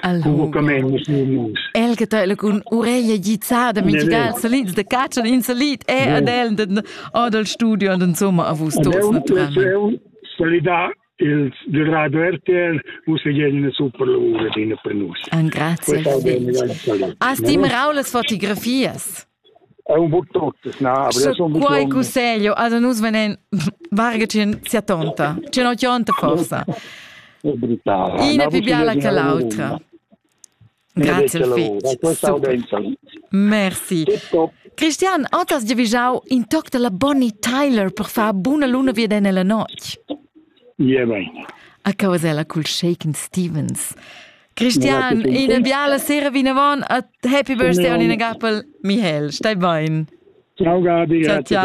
El che tøla cun ureglia gizzada magical solid de caccia in solid e ad el den adel studio und insomma a vus tos naturalmente solidar il durato RTL us e jene super lavora din per nus. An grazie. As tim Raules fotografias. un buc tuttas, na, aber so quai cusseglio, also nus venen vargacin sia tonta, c'è no tionta forsa. Ina più biala che l'altra. Grazie Fitz. Merci. Christian, otas giavijau in toc della Bonnie Tyler per far buna luna via den la noc? Ja, bene. A causa la cul Shaken Stevens. Christian, ina biala sera vinavon e happy birthday on ina gappel. Michael, stai bein. Ciao Gadi. Ciao, ciao.